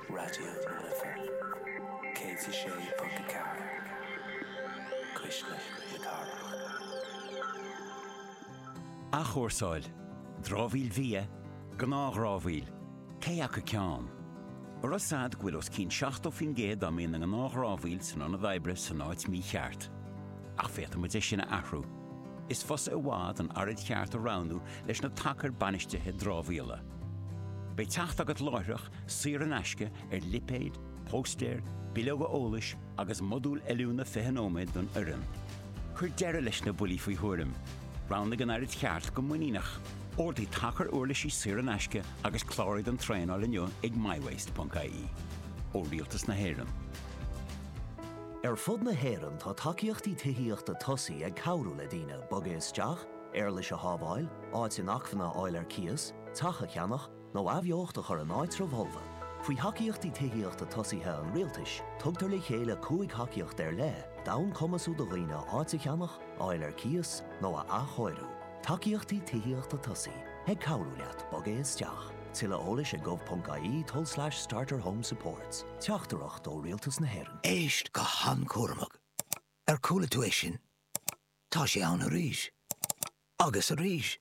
Raidió na Life 106.4, cuisle na cathrach. Athchúrsáil, dramhaíl bhia, gnáthdhramhaíl, cé acu ceann? Arbh eol duit go bhfuil os cionn 70% dá mbíonn ina ngnáthdhramhaíl san ionad oibre san áit mícheart. Ach féadfaidh muid é sin a athrú. Is fusa i bhfad an araid cheart a roghnú leis na tacair bainistithe dramhaíola. Beidh teacht agat láithreach, saor in aisce, ar lipéid, póstaeir, bileoga eolais agus modúl oiliúna 20 nóiméad don fhoireann. Cuir deireadh leis na buillí faoi thuairim. Roghnaigh an araid cheart go muiníneach. Ordaigh tacair uirlisí saor in aisce agus cláraigh don traenáil inniu ag mywaste.ie. Ó Rialtas na hÉireann. Ar fud na hÉireann tá tacaíochtaí tithíochta tosaigh ag cabhrú le daoine bogadh isteach, éarlais a shábháil, áit inacmhainne a fháil ar cíos, teach a cheannach, nó athbheocht a chur in áitribh fholmha. Faoi Thacaíochtaí Tithíochta Tosaigh an Rialtais, tugtar le chéile cúig thacaíocht ar leith d'fhonn cumasú do dhaoine áit a cheannach, a fháil ar cíos, nó a athchóiriú. Tacaíochtaí Tithíochta Tosaigh, ag cabhrú leat bogadh isteach. Tuilleadh eolais ag gov.ie tulslais starter home supports. Teachtaireacht ó Rialtas na hÉireann. Éist go han-chúramach. Ar chuala tú é sin? Tá sé ann arís. Agus arís.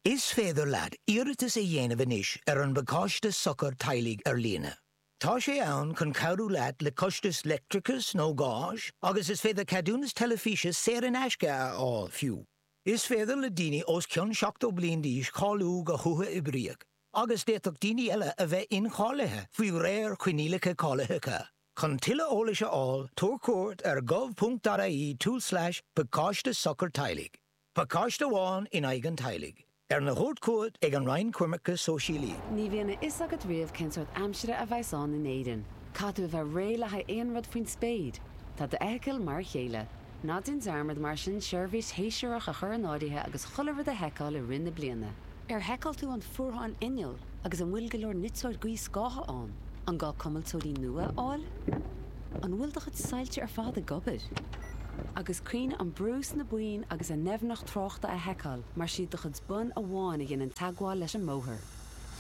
Is féidir leat iarratas a dhéanamh anois ar an bPacáiste Sochair Teaghlaigh ar líne. Tá sé ann chun cabhrú leat le costais leictreachais nó gáis agus is féidir ceadúnas teilifíse saor in aisce a fháil fiú. Is féidir le daoine os cionn 70 bliain d'aois cáiliú go huathoibríoch. agus d'fhéadfadh daoine eile a bheith incháilithe faoi réir coinníollacha cáilitheacha. Chun tuilleadh eolais a fháil, tabhair cuairt ar gov.ie tulslais pacáiste sochair teaghlaigh, pacáiste amháin in aghaidh an teaghlaigh, arna thabhairt chugat ag an Roinn Coimirce Sóisialaí. Ní bhíonn a fhios agat riamh cén sórt aimsire a bheas ann in Éirinn. Caithfidh tú a bheith réidh le haghaidh aon rud faoin spéir. Tá d'fheithicil mar a chéile. Ná déan dearmad, mar sin, seirbhís shéasúrach a chur in áirithe agus chuile rud a sheiceáil i rith na bliana. Ar sheiceáil tú an fuarthán innill agus an bhfuil go leor niteoir gaothscátha ann? An gá cuimilteoirí nua a fháil? An bhfuil do chuid soilse ar fad ag obair? Agus cuimhnigh an brú sna boinn agus a ndoimhneacht tráchta a sheiceáil mar is iad do chuid bonn amháin a dhéanann teagmháil leis an mbóthar.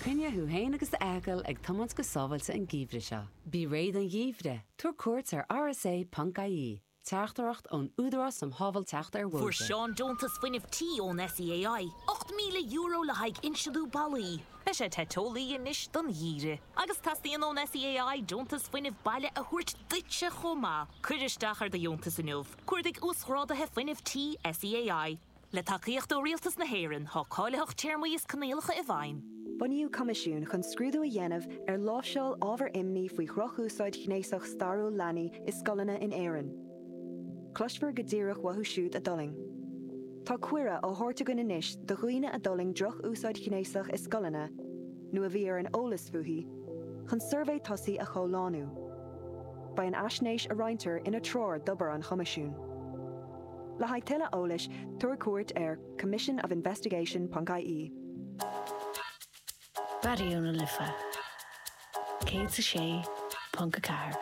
Coinnigh thú féin agus d'fheithicil ag tiomáint go sábháilte an geimhreadh seo. Bí réidh don gheimhreadh, tabhair cuairt ar rsa.ie. Teachtaireacht ón Údarás um Shábháilteacht ar Bhóithre. Fuair Seán deontas fuinnimh tí ón SEAI, €8,000 le haghaidh insliú ballaí. Beidh sé te teolaí anois don gheimhreadh agus teastaíonn ón SEAI deontas fuinnimh baile a thabhairt duitse chomh maith. Cuir isteach ar do dheontas inniu, cuardaigh Uasghráduithe Fuinnimh Tí SEAI. Le tacaíocht ó Rialtas na hÉireann, tá cáilitheacht, téarmaí is coinníollacha i bhfeidhm. Bunaíodh coimisiún chun scrúdú a dhéanamh ar láimhseáil ábhar imní faoi dhrochúsáid ghnéasach stairiúil leanaí i scoileanna in Éirinn. Cloisfear go díreach uathu siúd a d'fhulaing. Tá cuireadh á thabhairt againn anois do dhaoine a d'fhulaing droch-úsáid ghnéasach i scoileanna, nó a bhí ar an eolas fúithi, chun suirbhé tosaigh a chomhlánú. Beidh an fhaisnéis a roinntear ina treoir d'obair an Choimisiúin. Le haghaidh tuilleadh eolais, tabhair cuairt ar commissionofinvestigation.ie. Raidió na Life 106.4.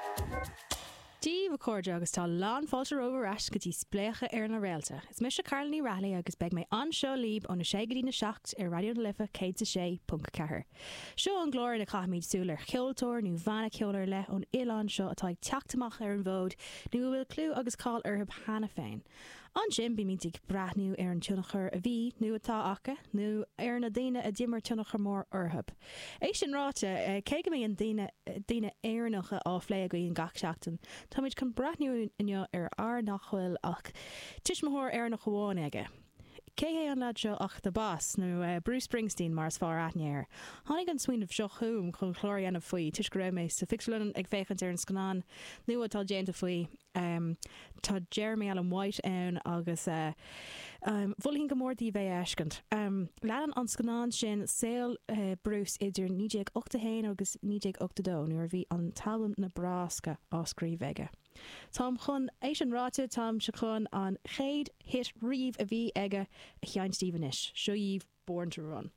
Cidh, a chairde, agus tá lán fáilte romhaibh ar ais go dtí Spléachadh ar na Réalta. Is mise Carla Ní Raghallaigh agus beidh mé anseo libh óna sé go dtí na seacht ar Raidió na Life 106.4. Seo an clár ina chaithfimid súil ar cheoltóir nó bhanna ceoil ar leith ón oileán seo atá ag teacht amach ar an bhfód nó a bhfuil clú agus cáil orthu cheana féin. Ansin bímid ag breathnú ar an tionchar a bhí nó atá acu nó ar na daoine a d'imir tionchar mór orthu. É sin ráite, cé go mbíonn daoine Éireannacha á phlé againn gach seachtain, táimid chun breathnú inniu ar fhear nach bhfuil ach tuismitheoir Éireannach amháin aige. Cé hé an lead seo ach The Boss, nó Bruce Springsteen mar is fearr aithne air. Tháinig an smaoineamh seo chugam chun clár a dhéanamh faoi toisc go raibh mé sa phictiúrlann ag féachaint ar an scannán nua atá déanta faoi. Tá Jeremy Allen White ann agus mholfainn go mór daoibh é a fheiscint. Leanann an scannán sin saol Bruce idir 1981 agus 1982 nuair a bhí an t-albam Nebraska á scríobh aige. Táim chun, é sin ráite, táim chun an chéad hit riamh a bhí aige a sheinnt daoibh anois, seo dhíobh Born to Run.